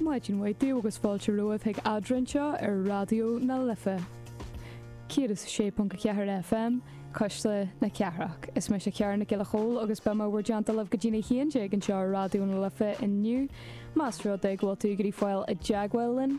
Maidin mhaith daoibh agus fáilte romhaibh chuig Eadra anseo ar Raidió na Life 106.4 FM, Cuisle na Cathrach. Is mise Ciara Nic Giolla Chomhaill agus beidh mé i bhur dteannta libh go dtí na haon déag anseo ar Raidió na Life inniu. Más rud é go bhfuil tú ag iarraidh fáil i dteagmháil linn,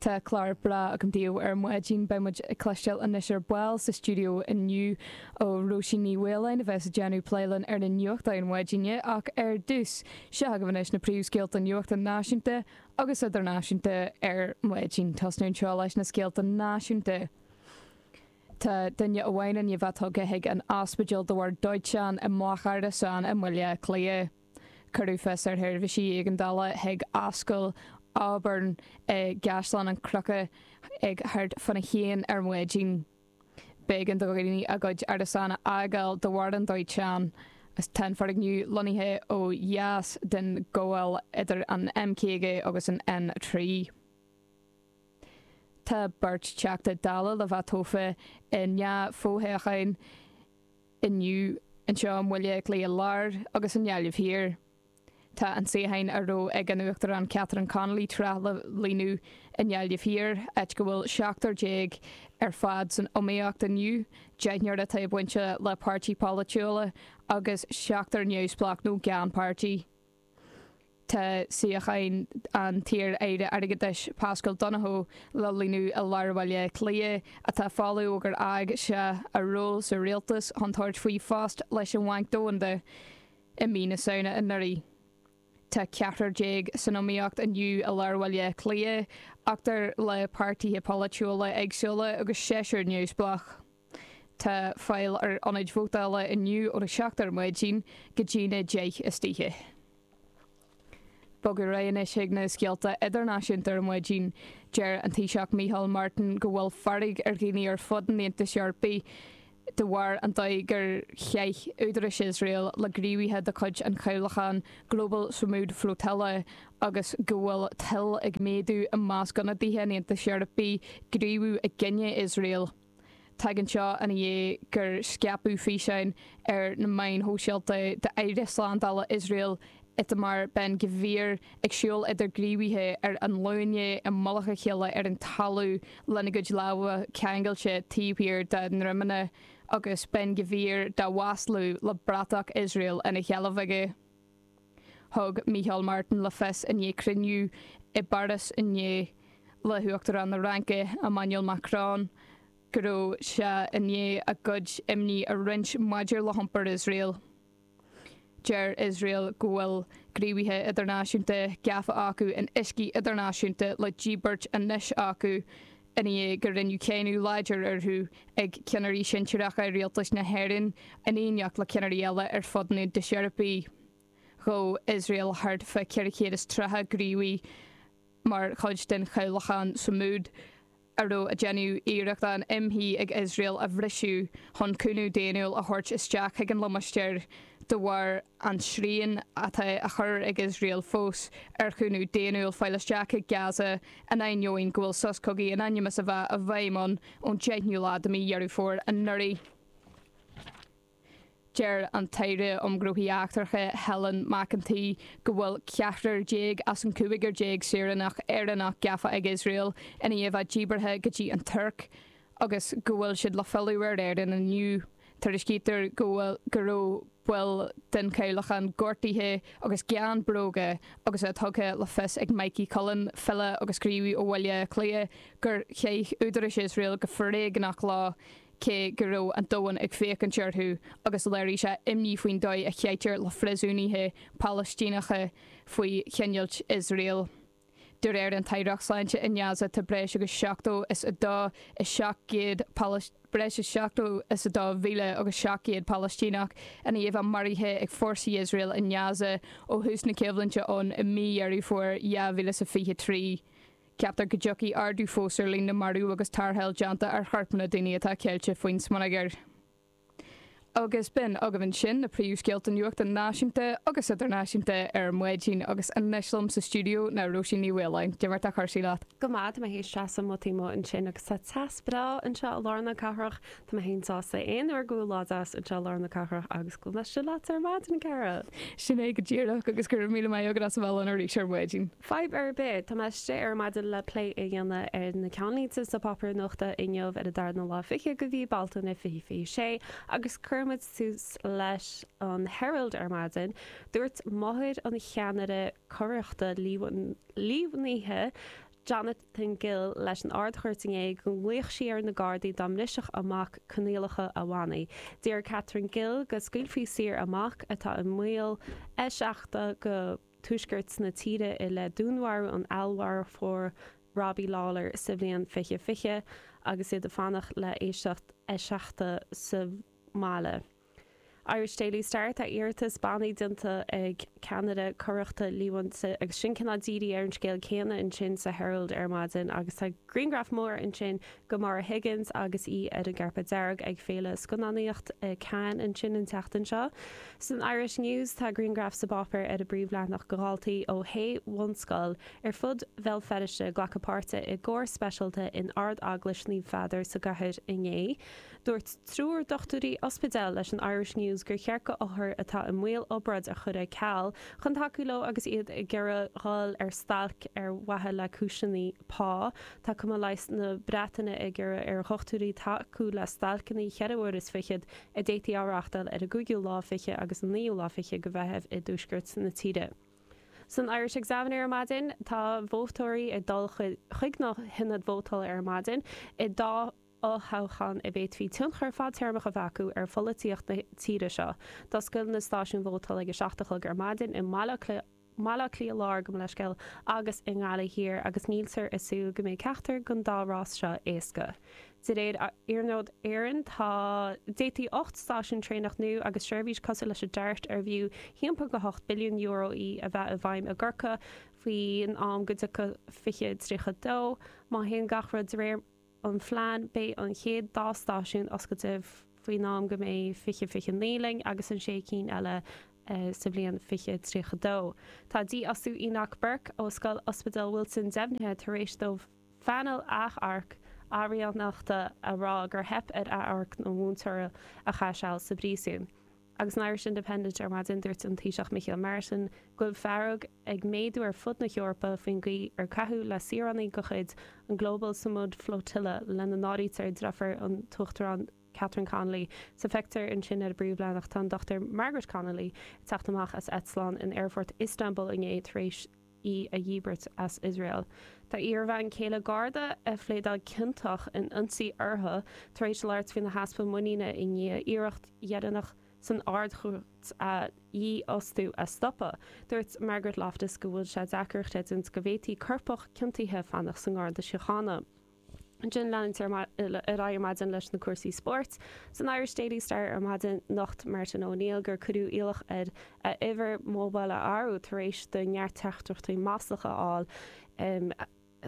Tá clár breá agam daoibh ar maidin. Beidh muid ag cloisteáil anois ar ball sa stiúideo inniu ó Róisín Ní Mhaoláin a bheas ag déanamh plé linn ar na nuachtáin na maidine ach ar dtús, seo agaibh anois na príomhscéalta nuachta náisiúnta agus idirnáisiúnta ar maidin. Tosnú anseo leis na scéalta náisiúnta. Tá duine amháin i ndiaidh a bheith tugtha chuig an ospidéal de bharr dóiteáin i mbloc árasán i mBaile Átha Cliath. Cuireadh fios ar sheirbhísí éigeandála chuig Ascaill Auburn i gCaisleán Cnucha ag thart fá na haon ar maidin. B'éigean do dhaoine a gcuid árasán a fhágáil de bharr an dóiteáin. Tá an foirgneamh lonnaithe ó dheas den ghabháil idir an M50 agus an N3. Tá beirt Teachta Dála le bheith tofa i ndá fho-thoghchán. Inniu, anseo i mBaile Átha Cliath Láir agus i nGaillimh Thiar, tá an suíochán a raibh ag an Uachtarán Catherine Connolly tráth le líonadh i nGaillimh Thiar, áit go bhfuil seachtar déag ar fad san iomaíocht inniu, deichniúr atá bainte le páirtí polaitiúla agus seachtar neamhspleách nó gan pháirtí. Tá suíochán an t-iar-aire airgeadais Paschal Donohoe le líonadh i lár Bhaile Cliath, atá folamh ó gur fhág sé a ról sa rialtas chun tabhairt faoi phost leis an Bhanc Domhanda i mí na Samhna anuraidh. Tá ceathrar déag san iomaíocht inniu i lár Bhaile Cliath, ochtar le páirtithe polaitiúla éagsúla agus seisear neamhspleách. Tá fáil ar ionaid vótála inniu ón 7 ar maidin go dtí'n 10 istoíche. Bogadh ar aghaidh anois chuig na scéalta idirnáisiúnta ar maidin. Deir an Taoiseach Micheál Martin go bhfuil fearg ar dhaoine ar fud an Aontais Eorpaigh de bharr an dóigh gur chaith údarais Iosrael le gníomhaithe de chuid an chabhlacháin Global Sumud Flotilla agus go bhfuil toil ag méadú i measc ionadaithe an Aontais Eorpaigh gníomhú i gcoinne Iosrael. Tagann seo ina dhiaidh gur scaipeadh físeáin ar na meáin shóisialta d'Aire Slándála Iosrael Itamar Ben Gvir ag siúl idir gníomhaithe ar a nglúine i mullach a chéile ar an talamh lena gcuid lámha ceangailte taobh thiar dá ndroimeanna agus Ben Gvir dá mhaslú le bratach Iosrael ina sheilbh aige. Thug Micheál Martin le fios i ndiaidh cruinniú i bPáras inné le hUachtarán na Fraince, Emmanuel Macron, go raibh sé i ndiaidh a gcuid imní a roinnt maidir le hiompar Iosrael. Deir Iosrael go bhfuil gníomhaithe idirnáisiúnta gafa acu in uiscí idirnáisiúnta le díbirt anois acu i ndiaidh gur rinneadh cáineadh láidir orthu ag ceannairí sinsearacha rialtas na hÉireann, in éineacht le ceannairí eile ar fud an Aontais Eorpaigh. Ghabh Iosrael thart fá 430 gníomhaí mar chuid den chabhlachán Sumud, a raibh ag déanamh iarracht an imshuí ag Iosrael a bhriseadh chun cúnamh daonnúil a thabhairt isteach chuig an limistéar de bharr an srian atá á chur ag Iosrael fós ar chúnamh daonnúil fáil isteach go Gaza in ainneoin go bhfuil sos cogaidh in ainm is a bheith i bhfeidhm ann ón 10ú lá de mhí Dheireadh Fómhair anuraidh. Deir an tAire um Ghnóthaí Eachtracha Helen McEntee go bhfuil ceathrar déag as an gcúigear déag saoránach Éireannach gafa ag Iosrael i ndiaidh a bheith díbeartha go dtí an Tuirc, agus go bhfuil siad le filleadh ar Éirinn inniu, tuairiscítear go bhfuil, go raibh baill den chabhlachán gortaithe agus gan bróga agus é tugtha le fios ag Mikey Cullen, file agus gníomhaí ó Bhaile Átha Cliath, gur chaith údaráis Iosrael go foréigneach leo cé go raibh an domhan ag féachaint orthu agus léirigh sé imní faoin dóigh a chaitear le phríosúnaithe Palaistíneacha faoi choinneáilt Iosrael. De réir an t-aireacht sláinte i nGaza, tá breis agus 72 is 700 Palas, breis is 72,000 agus 700 Palaistíneach i ndiaidh a bheith maraithe ag fórsaí Iosrael i nGaza ó thús na coimhlinte ann i mí Dheireadh Fómhair 2023. Ceaptar go dtiocfaidh ardú fós ar líon na marbh agus tarrtháil déanta ar chorp na daoine atá ceilte faoin smionagar. Agus b'in agaibh ansin na príomhscéalta nuachta náisiúnta agus idirnáisiúnta ar maidin agus anois liom sa stiúideo ná Róisín Ní Mhaoláin. Cad é mar atá cúrsaí leat. Go maith, tá mé théis seasamh taobh amuigh ansin agus tá teas breá anseo i lár na cathrach. Tá mé féin sásta aon uair go bhfuil lá deas anseo i lár na cathrach agus go bhfuil mé seo leat ar maidin, a Cara. Sin é go díreach, agus go raibh míle maith agat as a bheith linn arís ar maidin. Fadhb ar bith, tá mé istigh ar maidin le plé a dhéanamh ar na ceannlínte sna páipéir nuachta inniu ar an darna lá fichead de mhí Bealtaine 2026 agus cuirfidh muid tús leis an Herald ar maidin, dúirt máthair an cheannaire coireachta líomhnaithe Jonathan Gill leis an Ard-Chúirt inné go nglaoch sí ar na Gardaí dá mbrisfeadh a mac coinníollacha a bhannaí. D'iarr Catherine Gill go scaoilfí saor a mac atá i mbaol eiseachadta go tuaisceart na tíre i leith dúnmharú an fheallmharfóir Robbie Lawlor sa bhliain fiche fiche agus iad ag fanacht le héisteacht eiseachta sa mbaile. Irish Daily Star, Tá iarratas bannaí déanta ag ceannaire coireachta líomhainte agus sin cineál dírithe ar an scéal céanna ansin sa Herald ar maidin agus tá grianghraf mór ansin go Maura Higgins agus í ar an gcairpéad dearg ag féile scannánaíocht i Cannes ansin an tseachtain seo. San Irish News tá grianghraf sa bpáipéar ar an bpríomhleathanach de dhaltaí ó shé bhunscoil ar fud Bhéal Feiriste ag glacadh páirte i gcór speisialta in Ard-Eaglais Naomh Peadar sa gcathair inné. Dúirt triúr dochtúirí ospidéil leis an Irish News gur cheart go othair atá i mbaol obráid a chur ar ceal chun tacú leo agus iad ag iarraidh dhul ar stailc ar mhaithe le cúiseanna pá. Tá Cumann Leighis na Breataine ag iarraidh ar dhochtúirí tacú le stailceanna 4 uair is fichead a d'fhéadfaí a reáchtáil ar an 5ú lá fichead agus an 9ú lá fichead de Mheitheamh i dtuaisceart na tíre. San Irish Examiner ar maidin, tá vótóirí ag dul chuig na hionaid vótála ar maidin in dhá fhothoghchán a bhféadfaí tionchar fadtéarmach a bheith acu ar pholaitíocht na tíre seo, d'oscail na stáisiúin vótála ag a seacht a chlog ar maidin i mBaile Átha Cliath. i mBaile Átha Cliath Láir, gabh mo leithscéal agus i nGaillimh Thiar agus níltear ag súil go mbeidh ceachtar den dá rás seo éasca. De réir Iarnród Éireann, d'fhéadfadh ocht stáisiún traenach nua agus seirbhís cosúil leis an Dart, arbh fhiú timpeall go €8 billiún í, a bheith i bhfeidhm i gCorcaigh faoin am go dtiocfadh 2032, má théann gach rud de réir an phlean, beidh an chéad dá stáisiún oscailte faoin am go mbeidh fiche, 29 linn, agus na sé cinn eile sa bhliain fiche, 32. Tá dífhostú Enoch Burke ó Scoil Ospidéal Wilson deimhnithe tar éis do phainéal achomhairc araíonachta a rá gur theip ar achomharc an mhúinteora a chaith seal sa bpríosún. Agus san Irish Independent ar maidin, dúirt an Taoiseach Micheál Martin go bhfuil fearg ag méadú ar fud na hEorpa faoin gcaoi ar caitheadh le saoránaigh de chuid an Global Sumud Flotilla, lena n-áirítear deirfiúr an Uachtaráin Catherine Connolly, sa phictiúr ansin ar an bpríomhleathanach tá an Dr Margaret Connolly ag teacht amach as eitleán in aerfort Istanbul inné tar éis í a dhíbirt as Iosrael. Tá iarbhean chéile Garda a phléadáil ciontach in ionsaí uirthi tar éis labhairt faoina heaspa muiníne i ndiaidh iarracht dheireanach san Ard-Chúirt a dhífhostú a stopadh. Dúirt Margaret Loftus go bhfuil sé deacair a chreidiúint go bhféadfadh coirpeach ciontaithe fanacht sa nGarda Síochána. Ansin leanúint ar aghaidh ar maidin leis na cúrsaí spóirt. San Irish Daily Star ar maidin nocht Martin O'Neill gur cuireadh iallach air a uimhir mobile a athrú tar éis dó neart teachtaireachtaí maslach a fháil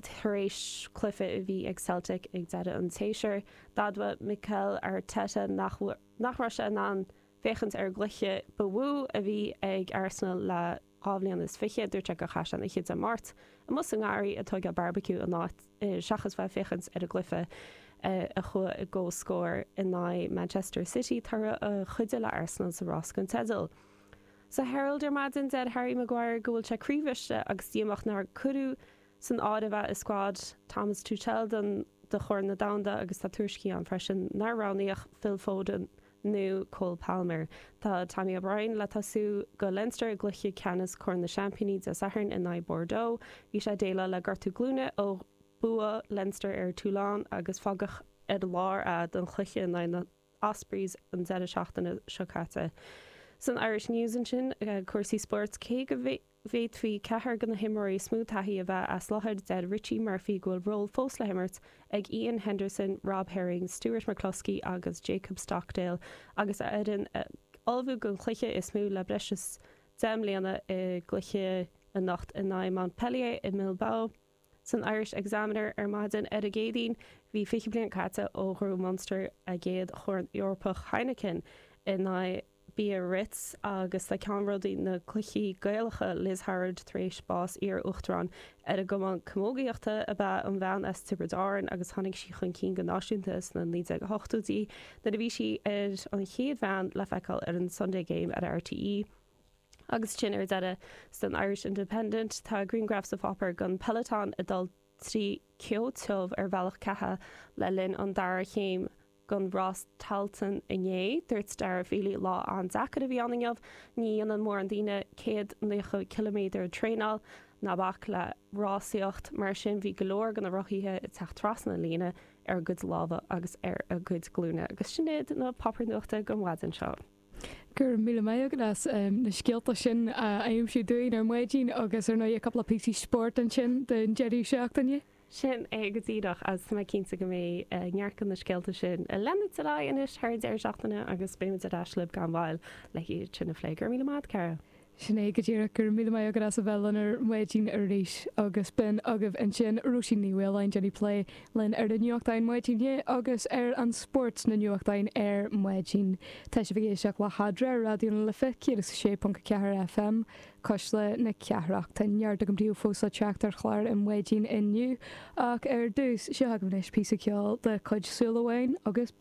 tar éis cluiche a bhí ag Celtic ag deireadh an tséasúir. D'admhaigh Mikel Arteta nach raibh sé in ann féachaint ar an gcluiche ba mhó a bhí ag Arsenal le dhá bhliain is fiche, dúirt sé gur chaith sé an oíche Dé Máirt amuigh sa ngarraí ag tóigeáil barbecue in áit seachas bheith ag féachaint ar an gcluiche a chuaigh i gcomhscór in aghaidh Manchester City, toradh a chuidigh le Arsenal sa rás don teideal. Sa Herald ar maidin, deir Harry Maguire go bhfuil sé croíbhriste agus díomách nár cuireadh san áireamh é i scuad Thomas Tuchel do Chorn na Domhanda agus tá tuairiscí ann freisin nár roghnaíodh Phil Foden nó Cole Palmer. Tá Tommy O'Brien le tosú do Leinster i gcluiche ceannais Chorn na Seaimpíní Dé Sathairn in aghaidh Bordeaux. Bhí sé ag déileáil le gortú glúine ó bhua Leinster ar Toulon agus fágadh ar lár é don chluiche in aghaidh na Ospreys an deireadh seachtaine seo caite. San Irish News ansin, cúrsaí spóirt, cé go bhféadfaí ceathrar de na himreoirí is mó taithí a bheith as láthair, deir Richie Murphy go bhfuil ról fós le himirt ag Iain Henderson, Rob Herring, Stuart McCloskey agus Jacob Stockdale agus a fhoireann ag ullmhú don chluiche is mó le breis is deich mbliana i gcluiche anocht in aghaidh Montpellier i mBilbao. San Irish Examiner ar maidin ar an gCéadaoin bhí 20 bliain caite ó ghnóthaigh Munster a gcéad chorn Eorpach Heineken in aghaidh Biarritz agus tá ceannródaí na gcluichí Gaelacha, Liz Howard tar éis bás Iar-Uachtarán ar an gCumann Camógaíochta ab ea an bhean as Tiobraid Árann agus tháinig sí chun cinn go náisiúnta sna 1980idí nuair a bhí sí ar an chéad bhean le feiceáil ar an Sunday Game ar RTÉ. Agus sin ar deireadh san Irish Independent, tá grianghraf sa pháipéar den Peloton ag dul trí cheo tiubh ar bhealach ceatha le linn an dara chéim den rás Tailteann inné. Dúirt Daire Feeley, Lá an-deacair a bhí ann inniu. Ní dhéanann mórán daoine céad naocha ciliméadar traenáil, ná bac le rásaíocht, mar sin bhí go leor de na rothaithe ag teacht trasna an líne ar a gcuid lámha agus ar a gcuid glúine. Agus sin iad na páipéir nuachta don mhaidin seo. Go raibh míle maith agat as na scéalta sin a aimsiú dúinn ar maidin agus ar ndóigh cúpla píosa spóirt ansin don deireadh seachtaine. Sin é go díreach agus tá mé cinnte go mbeidh neart de na scéalta sin ag leanacht ar aghaidh anois thar an deireadh seachtaine agus beimid ar ais libh gan mhoill le hiad sin a phlé. Go raibh míle maith agat, Caragh. Sin é go díreach, go raibh míle maith agat as a bheith linn ar maidin arís, agus b'in agaibh ansin Róisín Ní Mhaoláin, ag déanamh plé linn ar na nuachtáin maidine agus ar an spórt sna nuachtáin ar maidin. Tá sibh ag éisteacht le hEadra ar Raidió na Life 106.4 FM, Cuisle na Cathrach. Tá neart agam daoibh fós le teacht ar chlár an mhaidin inniu, ach ar dtús, seo agaibh anois píosa ceoil de chuid Súil Amháin agus.